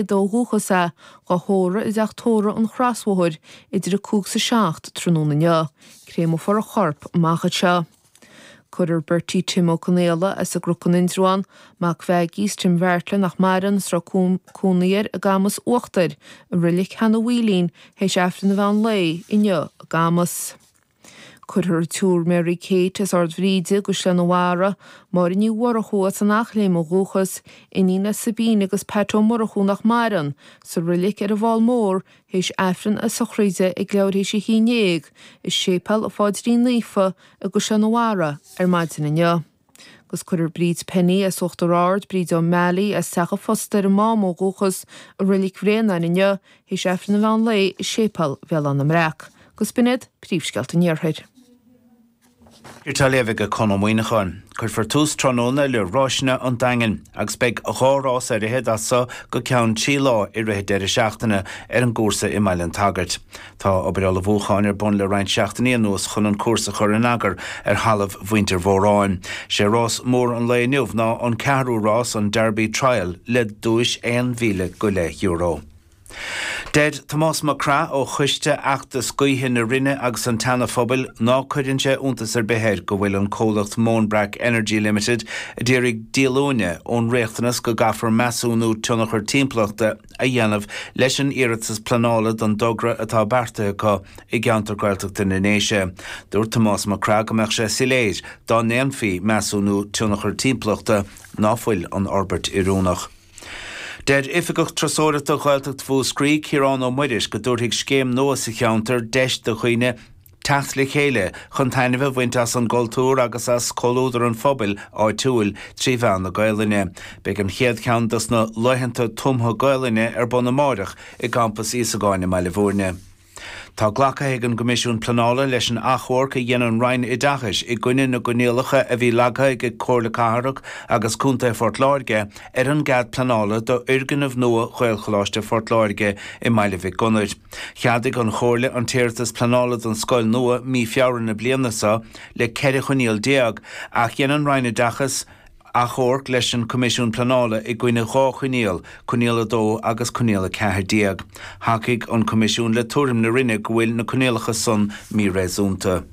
ó dhúchas, dhá thórramh i dTeach Tórraimh an Chrosbhóthair, idir a cúig 's a seacht tráthnóna inniu, créamofar a chorp amach anseo. Cuirfear Bertie Tim Ó Conaola as an gCruc in Indreabhán, mac Mheaigí 's Tim Bheairtle nach maireann 's a raibh cónaí air i gCamas Uachtair, i Reilic Sheanadh Mhaoilín, théis Aifreann an mheán lae inniu i gCamas. Cuirfear an tSiúr Mary Kate as Ard Bhríde i gCaisleán an Bharraigh, Máire Ní Mhurchú as an Eachléim ó dhúchas, iníon le Sabina agus Pat Ó Murchú nach maireann, sa Rilic ar an bhFál Mór théis Aifreann a sochraide ag leathuair théis a haon déag i Séipéal an Phaidrín Naofa i gCaisleán an Bharraigh ar maidin inniu. Agus cuirfear Bríd Penny as Uachtar Ard, Bríd O'Malley as Teach an Phosta ar an Mám ó dhúchas, i Reilig Bhréanainn inniu, théis Aifreann an mheán lae i Séipéal Bhéal Átha na mBreac. Agus b'in iad príomhscéalta an Iarthair. Á léamh ag Conn Ó Muíneacháin. Cuirfear tús tráthnóna le ráiseanna an Daingin agus beidh dhá rás ar fhichead as so go ceann trí lá i rith an deireadh seachtaine ar an gcúrsa i mBaile an tSagairt. Tá obair ullmhúcháin ar bun le roinnt seachtainí anuas chun an cúrsa a chur in eagar ar thalamh mhuintir Mhóráin. Sé rás mór an lae inniu ná an ceathrú rás, an Derby Trial, le duais aon mhíle go leith euro. Deir Tomás Mac Craith ó choiste fheachtas gaoithe na Rinne agus an tSeana Phobail ná cuireann sé iontas ar bith air go bhfuil an comhlacht Moanbrack Energy Limited a d'iarraidh díolúine ón riachtanas go gcaithfear measúnú tionchar timpeallachta a dhéanamh leis an iarratas pleanála don dtogra atá beartaithe acu i gceantar Gaeltachta na nDéise. Dúirt Tomás Mac Craith go mbeadh sé soiléir, dá ndéanfaí measúnú tionchar timpeallachta, ná fuil an fhorbairt oiriúnach. Deir Oifigeach Turasóireachta Ghaeltacht Mhúscraí, Ciarán Ó Muiris, go dtabharfaidh scéim nua sa cheantar deis do dhaoine, Teacht le chéile chun taitneamh a bhaint as an gcultúr agus as comhluadar an phobail áitiúil trí mheán na Gaelainne. Beidh an chéad cheann dos na Laethanta Tumtha Gaelainne ar bun amáireach i gCampas Íosagáin i mBaile Mhúirne. Tá glactha ag an gCoimisiún Pleanála leis an achomharc a dhein an Roinn Oideachais i gcoinne na gcoinníollacha a bhí leagtha ag Comhairle Cathrach agus Contae Phort Láirge ar an gcead pleanála d'fhoirgneamh nua Ghaelcholáiste Phort Láirge i mBaile Mhic Gonair. Cheadaigh an Chomhairle an t-iarratas pleanála don scoil nua mí Feabhra na bliana seo le 14 choinníoll ach dhein an Roinn Oideachais achomharc leis an Coimisiún Pleanála i gcoinne dhá choinníoll, coinníoll 2 agus coinníoll 14. Thacaigh an Coimisiún le tuairim na Roinne go bhfuil na coinníollacha san míréasúnta.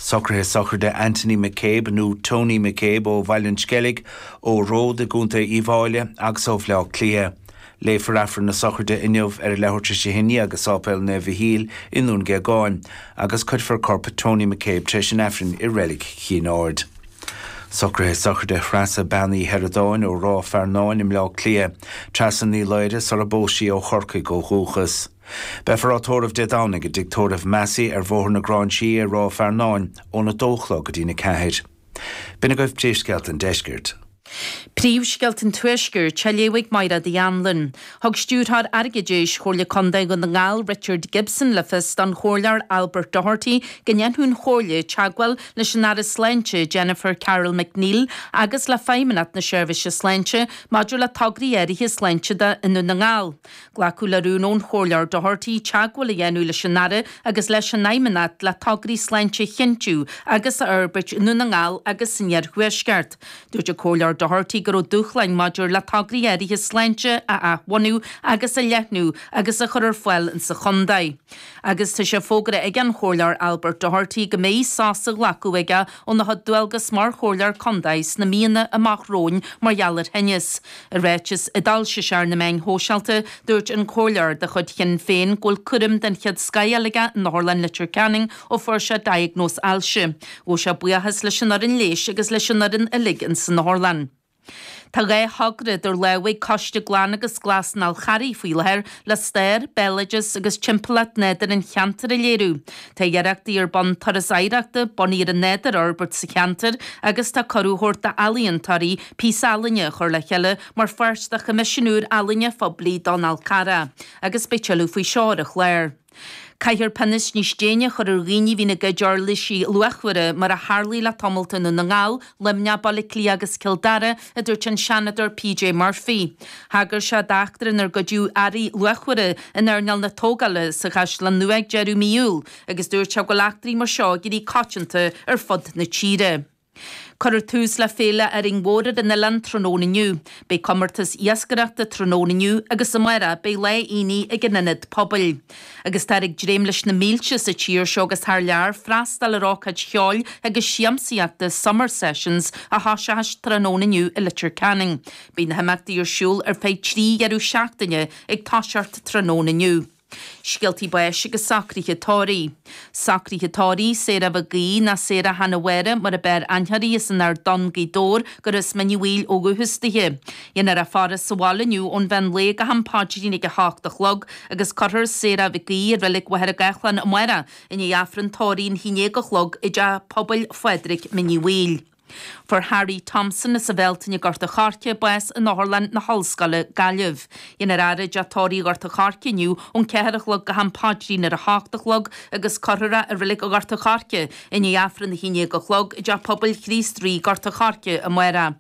Socruithe Sochraide Anthony McCabe, nó Tony McCabe, ó Bhaile an Sceilg, ó Ród i gContae Uíbh Fháile agus ó Bhleá Cliath. Léifear Aifreann na sochraide inniu ar a leathuair tar éis a 11 i Sáipéal Naomh Mhichíl i nDún Géagáin agus cuirfear corp Tony McCabe tar éis an Aifrinn i Reilig Chinn Aird. Socruithe Sochraide Threasa Bean Uí Sheireadáin ó Ráth Fearnáin i mBleá Cliath, Treasa Ní Laoghaire sara bpós sí ó Chorcaigh ó dhúchas. Beifear á tórramh Dé Domhnaigh i dTigh Tórraimh Massey ar Bhóthar na Gráinsí i Ráth Fearnáin ón 2 a chlog go dtí'n 4. B'in agaibh Príomhscéalta an Deiscirt. Príomhscéalta an Tuaiscirt, á léamh ag Máiréad Uí Anluain. Thug Stiúrthóir Airgeadais Chomhairle Contae Dhún na nGall Richard Gibson le fios don Chomhairleoir Albert Doherty go ndéanfadh an Chomhairle teagmháil leis an Aire Sláinte Jennifer Carroll MacNeill agus le Feidhmeannacht na Seirbhíse Sláinte maidir le tograí áirithe sláinte i nDún na nGall. Glacadh le rún ón Chomhairleoir Doherty teagmháil a dhéanamh leis an Aire agus leis an Fheidhmeannacht le tograí sláinte a chinntiú agus a fhorbairt i nDún na nGall agus san Iarthuaisceart. Dúirt an Comhairleoir Doherty go raibh dúshláin maidir le tograí áirithe sláinte a athbhunú agus a leathnú agus a chur ar fáil sa chontae agus tá sé fógartha ag an Chomhairleoir Albert Doherty go mbeidh sos á ghlacadh aige óna chuid dualgas mar Chomhairleoir Contae sna míonna amach romhainn mar gheall ar thinneas. I ráiteas a d'fhoilsigh sé ar na meáin shóisialta, dúirt an comhairleoir de chuid Shinn Féin go bhfuil cúram den chéad scoth á fháil aige in Otharlann Leitir Ceanainn ó fuair sé diagnóis ailse. Ghabh sé buíochas leis an fhoireann leighis agus leis an fhoireann uilig ins an otharlann. Tá dhá thogra idir lámha ag Coiste Glan agus Glas an Fháil Charraigh faoi láthair le stair, béaloideas agus timpeallacht nádúrtha an cheantair a léiriú. Tá iarrachtaí ar bun turas oidhreachta bunaithe ar an nádúr a fhorbairt sa cheantar agus tá cuireadh á thabhairt d'ealaíontóirí píosa ealaíne a chur le chéile mar pháirt de choimisiún úr ealaíne phoiblí don Fhál Carrach agus beidh tuilleadh faoi seo ar an chlár. Caithfear pionóis níos déine a chur ar dhaoine a bhíonn ag goid uirlisí luachmhara mar a tharlaigh le tamallt i nDún na nGall, Luimneach, Baile Átha Cliath agus Cill Dara. a dúirt an Seanadóir PJ Murphy. Thagair sé d'eachtra inar goideadh earraí luachmhara in earnáil na tógála sa Chaisleán Nua ag deireadh mhí Iúil agus dúirt sé go bhfuil eachtraí mar seo ag éirí coitianta ar fud na tíre. Cuireadh tús le Féile Árainn Mhór ar an oileán tráthnóna inniu. Beidh comórtas iascaireachta tráthnóna inniu agus amárach beidh Lá Aonaigh ag an Ionad Pobail. Agus táthar ag dréim leis na mílte, sa tír seo agus thar lear, freastal ar ócáid cheoil agus siamsaíochta Summer Sessions a thosóchas tráthnóna inniu i Leitir Ceanainn. Beidh na himeachtaí ar siúl ar feadh trí dheireadh seachtaine, ag toiseacht tráthnóna inniu. Scéaltaí Báis agus Socruithe Tórraimh. Socruithe tórraimh Sarah Mhic Aoidh, nó Sarah Hannah Mháire mar ab fhearr aithne uirthi, as an Ard Donn, Gaoth Dobhair, gurb as Mín Uí Bhaoill ó dhúchas dithe. Dhéanfar an fhaire sa bhaile inniu ón mheán lae go ham páidrín ag a h-ocht a chlog agus cuirfear Sarah Mhic Aoidh i Reilig Mhachaire Gathlán amárach i ndiaidh Aifreann tórraimh a haon déag a chlog i dTeach Pobail Phádraig Mín Uí Bhaoill. Fuair Harry Thompson as an Bhealtaine i nGort a Choirce bás in Otharlann na hOllscoile, Gaillimh. Dhéanfar é a fhaire i dTeach Tórraimh Ghort a Choirce inniu ón ceathair a chlog go ham páidrín ar a h-ocht a chlog agus cuirfear é i Reilig Ghort a Choirce i ndiaidh Aifreann a haon déag a chlog i dTeach Pobail Chríost Rí, Gort a Choirce amárach.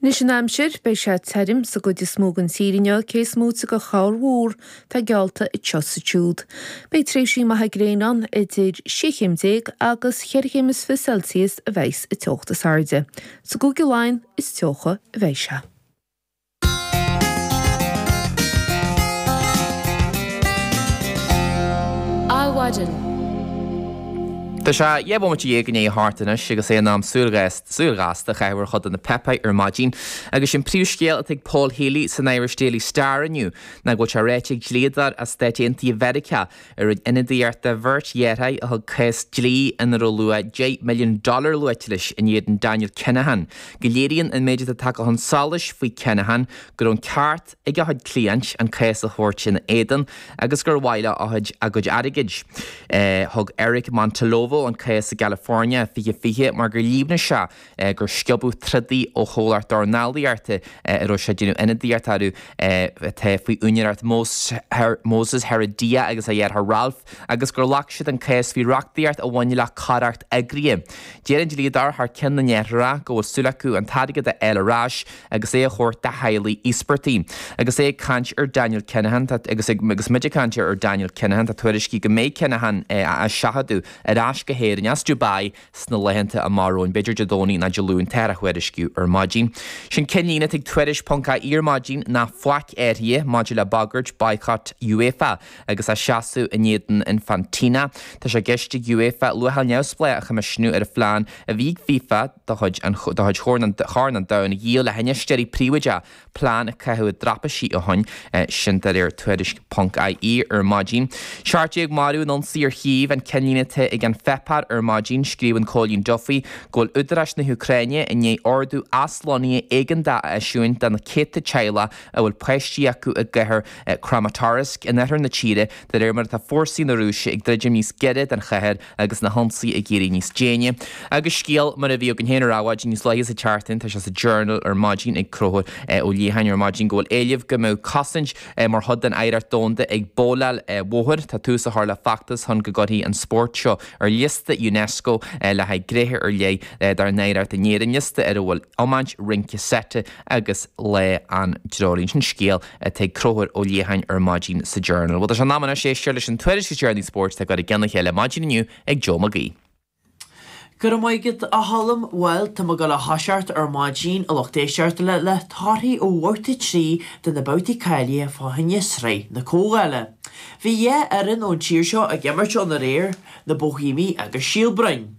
Anois an aimsir, beidh sé tirim sa gcuid is mó den tír inniu cé is moite de chorrmhúr atá geallta anseo is ansiúd. Beidh tréimhsí maithe gréine ann, idir sé chéim déag agus cheithre chéim is fiche Celsius a bheidh sa teocht is airde. Is i gCúige Laighean is teocha a bheidh sé. Adhmhaidin. Tá sé dhá bhomaite dhéag i ndiaidh a hocht anois agus é in am súil a bheith. Súil ghasta a chaitheamh ar chuid de na páipéir ar maidin agus an príomhscéal atá ag Paul Healy san Irish Daily Star inniu ná go bhfuil sé ráite ag dlíodóir as Stáit Aontaithe Mheiriceá a rinne ionadaíocht do bheirt dheartháir a thug cás dlí ina raibh luach 10 milliún dollar luaite leis in éadan Daniel Kinahan go léiríonn an méid atá tagtha chun solais faoi Kinahan go raibh an ceart ag a chuid cliaint an cás a thabhairt ina éadan agus gur mhaith leo a gcuid airgid. Thug Eric Montalvo an cás i gCalifornia 2020 mar gur líomhnaigh sé gur sciobadh trodaí ó chomhlacht dornálaíochta a raibh sé ag déanamh ionadaíocht orthu atá faoi úinéireacht Moses Heredia agus a dheartháir Ralph agus gur ghlac siad an cás faoi reachtaíocht a bhaineann le coireacht eagraithe. Deir an dlíodóir thar ceann na ndeartháireacha go bhfuil súil acu an t-airgead a fháil ar ais agus é a thabhairt do theaghlaigh íospartaigh. Agus é ag caint ar Daniel Kinahan, agus muid ag caint ar Daniel Kinahan, tá tuairiscí go mbeidh Kinahan á seachadadh ar ais go hÉirinn as Dubai sna laethanta amach romhainn, b'fhéidir Dé Domhnaigh nó Dé Luain atáthar a thuairisciú ar maidin. Is é an ceannlíne atá ag Tuairisc ponc ie ar maidin ná faic athraithe maidir le bagairt boycott UEFA. agus a seasamh in éadan Infantino. Tá sé i gceist ag UEFA luacháil neamhspleách a choimisiniú ar an phlean a bhí ag FIFA de chuid Chorn an Domhain a dhíol le hinfheisteoirí príobháideacha, plean a caitheadh i dtraipisí ó shin, sin de réir tuairisc ponc ie ar maidin. Seacht Déag Marbh in Ionsaí ar Chív, an ceannlíne atá ag An Páipéar ar maidin, scríobhann Cóilín Duffy go bhfuil údaráis na hÚcráine i ndiaidh ordú aslonnaithe éigeantach a eisiúint do na céadta teaghlach a bhfuil páistí acu i gcathair Kramatorsk in oirthear na tíre de réir mar atá fórsaí na Rúise ag druidim níos gaire don chathair agus na hionsaithe ag éirí níos déine. Agus scéal mar a bhí againn féin ar Adhmhaidin níos luaithe sa tseachtain, tá sé sa Journal ar maidin ag Concubhar Ó Liatháin ar maidin go bhfuil éileamh go mbeadh cosaint mar chuid den oidhreacht domhanda ag babhláil bhóthair. Tá tús á chur le feachtas chun go gcuirfí an spórt seo ar liosta Unesco le haghaidh gnéithe ar leith dár n-oidhreacht in Éirinn, liosta ar a bhfuil iomáint, rince seite, agus le an dTreoraíonn sin scéal atá ag Concubhar Ó Liatháin ar maidin sa Journal. Bhuel, tá sé in am anois éisteacht leis an tuairisc is deireanaí spóirt atá ag cur i gceann a chéile maidin inniu ag Joe Mag Aoidh. Go raibh maith agat, a Cholm. Bhuel, tá mé ag gabháil a thoiseacht ar maidin, a lucht éisteachta, le le torthaí ó bhabhta trí de na babhtaí cáilithe fá choinne Sraith na Comhdhála. Bhí dhá fhoireann ón tír seo ag imirt ann aréir, na Boihéamaigh agus Síol Broin.